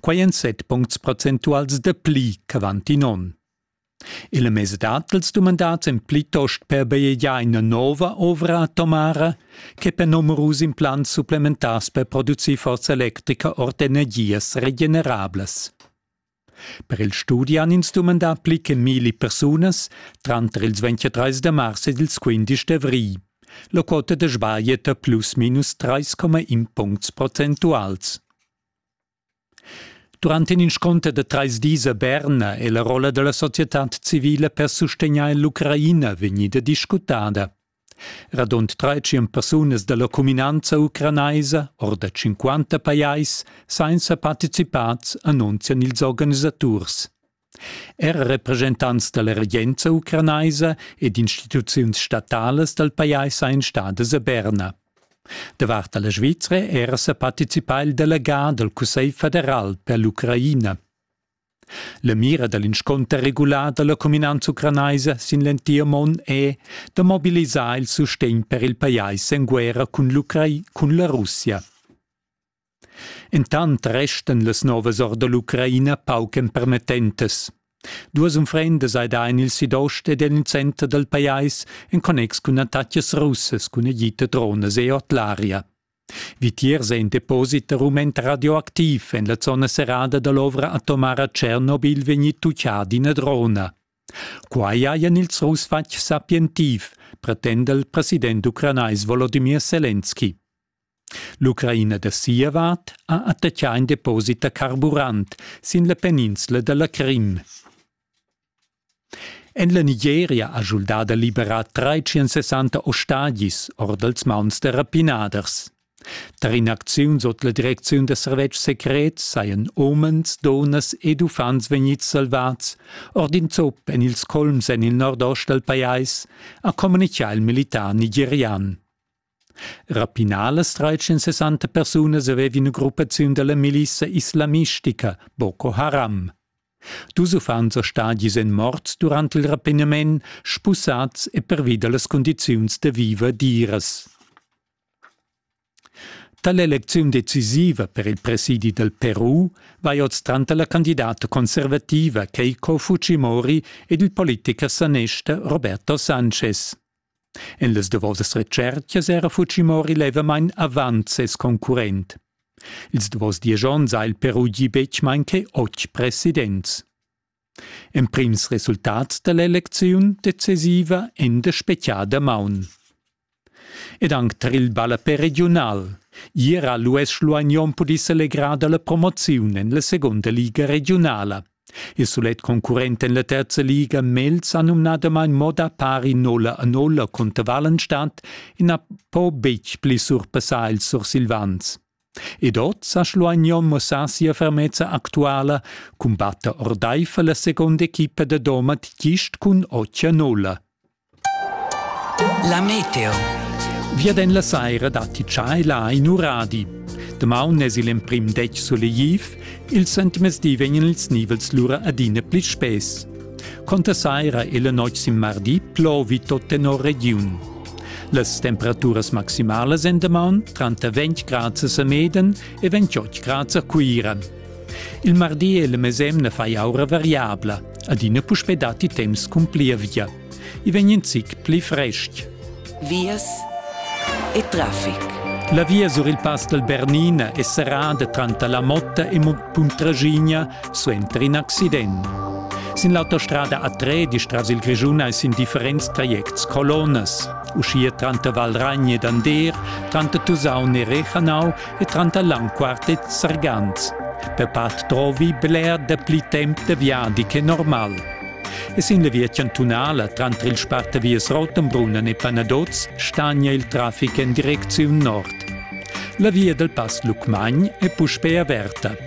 quai en set puncts procentuals de pli ch'avanti non. Il mesedat dels dumandats en plitost per beiegiar ina nova ovra atomara che per numerus implants supplementars per producir forza electrica ord energias regenerablas. Per il studi han ins dumandà pli che milli persunas tranter ils 23 de mars ed ils 15 d'avri. La quota de sbaglieta plus minus 3,1 puncts procentuals. Durant in inscunter da trais dis a Berna è la rolla da la societad civila per sustegnair l'Ucraina vegnida discutada. Radund 300 persunas da la cuminanza ucranaisa, or da 50 pajais, sainza participads, annunzian ils organisaturs. Er represchentants da la regenza ucranaisa ed instituziuns statalas dal pajais ein stadas a Berna. Davart la Svizra era sa participà il delegà dal Cussegl federal per l'Ucraina. La mira da l'inscunter regular da la cuminanza ucranaisa sin l'entir mund è da mobilisar il sustegn per il pajais en guerra cun, cun la Russia. Intant restan las novas or da l'Ucraina pauc empermettentas. Duas unfrendas ei da en il sidost ed en il center dal pajais en connex cun attacas russas cun agita dronas e artillaria. Vitiers è in deposit da rument radioactiv en la zona serrada dall'ovra atomara Chernobyl vegni tucchà d'ina drona. Quai hajan ils Russ fatg sapientiv, pretenda il president ucranais Volodymyr Selenski. L'Ucraina da sia vart ha attaccà in deposit da carburant sin la peninsla da la Crim. En la Nigeria ha schuldà da liberar 360 ostagis or dals mauns da rapinaders. Tar in'acziun sut la direcziun da servetschs secrets sajan umens, dunnas ed uffants vegnids salvads ord in zup en ils colms en il nordost dal pajais, ha communitgà il militar nigerian. Rapinalas trais-cent persunas avevien gruppaziun dalla milissa islamistica Boko Haram. Dus uffants e stadis ein morts durant il rapinament, spussats e pervi dallas condiziuns da viver diras. Tall'elecziun decisiva per il presidi dal Peru vai oz tranter la candidata conservativa Keiko Fujimori ed il politicher sanester Roberto Sanchez. En las davosas retschertgas era Fujimori levamain avant ses concurrent. Ils davos diesch onns ha il Peru gì betg main che otg presidents. Emprims resultats da l'elecziun decisiva en der spechiada maun. Ed anc tar il ballapè regiunal. Ier ha l'US Luagnon pudì selegrar da la promoziun en la segunda liga regiunala. Il sulet concurrent en la terza liga Mels ha numnadamain mo da pari nolla a nolla cunter Wallenstadt e na po betg pli surpassar ils Sursilvans. Ed oz ha Schluagnon mussà sia fermezza actuala, cumbatta ordaifer la seconda equipa da Domat gist cun otg a nolla. La meteo. Viaden la saira datti tschaiva in uradi. Damaun es il emprim detg solegliv, il sentmezdi vegnan ils nivels lura adina pli spess. Conta saira e la noc sin mardi plovi tot tenor regiun. Las temperaturas maximalas en damaun tranter 20 grads a Sameden e 28 grads a Cuira. Il mardi e la mesemna fai aura variabla, adina puspè datti temps cun plievgia. I vegn in zic pli frestg. Vias e traffic. La via sur il Pass dal Bernina è serrada tranter la Motta e Puntragigna suenter in accident. Sin l'autostrada A3 tras il Grischun hai sin differents trajects colonnas. Uschia tranter Valragna ed Ander, tranter Tusaun e Rechanau e tranter l'anquartet sargans. Per part trovi bler da pli temp da viadi che normal. E sin la via chantunala tranter il spartavias Rottenbrunn e Panadoz stagna il traffic en direcziun nord. La via dal Pass Lucmagn è puspè averta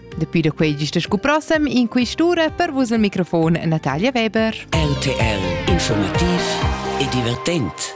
Dapi da quei gista scu prossem in quistura per vus al microfon Natalia Weber. RTL Informativ e divertent.